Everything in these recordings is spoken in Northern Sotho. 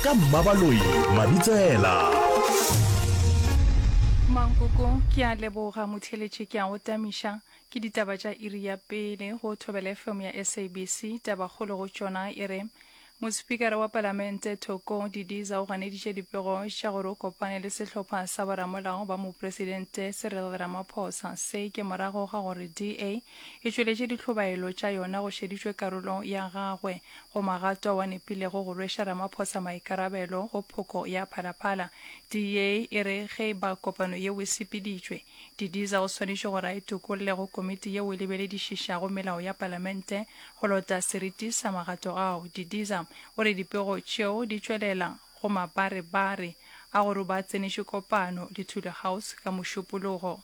ka mmabaloi mabitsela mankoko ke a leboga motheletše ke a go tamiša ke ditaba tša iri ya pele go thobela fm ya sabc tabakgolo go tšona e re mospikara wa palamente thoko didiza o ganeditše dipego tša gore o kopane le sehlopha sa boramolao ba mopresidente serel ramaphosa se ke morago ga gore da e tšweletše ditlhobaelo tša yona go šeditšwe karolo ya gagwe Go Magatwa wa nepilego go rweša Ramaphosa maikarabelo go phoko ya Phalaphala. DA e re ge e ba kopano yeo e sepeditšwe, Didiza o swanetše gore a itokolle go komiti yeo e lebeledišišago melao ya Palamente go lota seriti sa magato ao. Didiza o re dipego tšeo di tšwelela go mabarebare a gore o ba a tsenetše kopano le Thule House ka Mošupologo.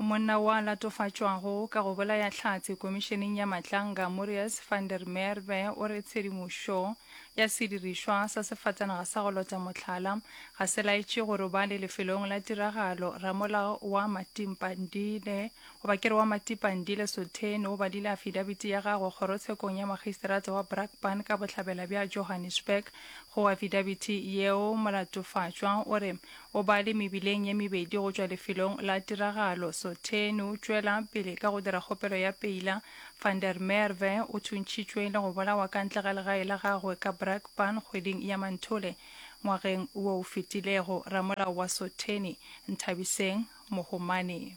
Monna wa latofatšwago ka go bolaya Hlatse Komišeneng ya Matlanga, Morius van der Merwe o re tshedimošo ya sedirišwa sa sefatanaga sa go lota mohlala ga se laetše go robale lefelong la tiragalo. Ramolao wa Matimpandile goba kere wa Matipandile Sotheni o badile afidabiti ya gagwe kgorotshekong ya makgisterata wa Brakpan ka bohlabela bja Johannesburg. Go afidabiti yeo, molatofatšwa o re O ba le mebileng ye mebedi go tšwa lefelong la tiragalo. Sotheni o tšwela pele ka go dira kgopelo ya peila. Van der Merwe o thuntšhitšwe le go bolawa ka ntle ga legae la gagwe ka Brakpan kgweding ya Manthole ngwageng wo o fetilego. Ramolao wa Sotheni, Nthabiseng Mohomane.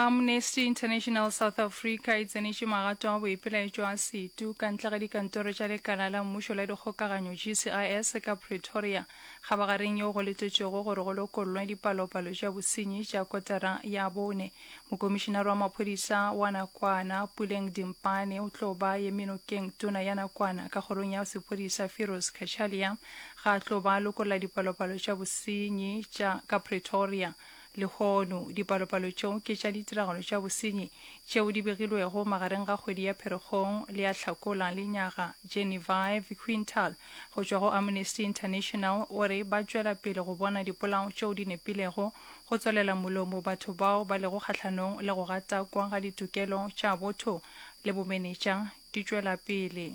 Amnesty International South Africa e tsenetše magato a boipelaetšo a setu ka ntle ga dikantoro tša lekala la mmušo la dikgokaganyo GCIS ka Pretoria kgabagareng yeo go letetšwego gore go lokollwe dipalopalo tša bosenyi tša kotara ya bone. Mokomišinare wa maphodisa wa nakwana Puleng Dimpane o tlo ba ye menokeng tona ya nakwana ka kgorong ya sephodisa Firoz Cachalia ga a tlo ba lokolla dipalopalo tša bosenyi tša ka Pretoria. Lehono, dipalopalo tšeo ke tša ditiragalo tša bosenyi tšeo di begilwego magareng ga kgwedi ya Pherekgong le ya Hlakola le nyaga. Genevieve Quintal go tšwa go Amnesty International o re ba tšwela pele go bona dipolao tšeo di nepilego go tswalela molomo batho bao ba lego kgahlanong le go gatakwa ga ditokelo tša botho le bomenetša di tšwela pele.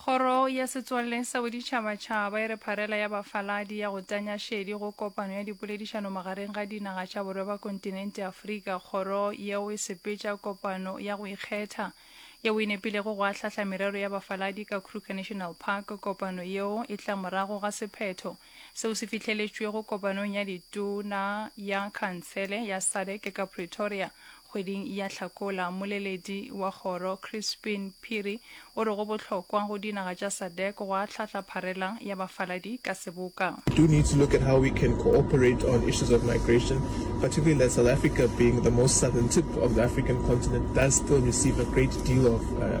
Kgoro ya Setswalle sa Boditšhabatšhaba e re pharela ya bafaladi ya go tanya šedi go kopano ya dipoledišano magareng ga dinaga tša borwa ba kontinente Afrika. Kgoro yeo e sepetša kopano ya go ikgetha yeo e nepilego go ahlahla merero ya bafaladi ka Kruger National Park. Kopano yeo e tla morago ga sephetho Seo se fihleletšwego kopanong ya ditona ya khansele ya sadc ka Pretoria kgweding ya Hlakola. Mmoleledi wa kgoro Crispin Phiri o re go bohlokwa go dinaga tša sadc go ahlahla pharela ya bafaladi ka seboka. do need to look at how we can cooperate on issues of migration, particularly that South Africa being the most southern tip of the African continent does still receive a great deal of uh,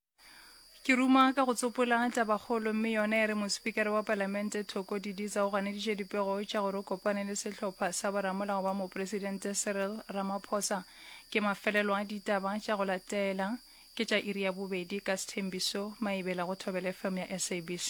Ke ruma ka go tsopola tabakgolo mme yona e re mospikara wa palamente Thoko Didiza o ganeditše dipego tša gore o kopane le sehlopha sa boramolao ba mopresidente Cyril Ramaphosa. Ke mafelelo a ditaba tša go latela ke tša iri ya bobedi ka sethembiso maebela go thobela fm ya SABC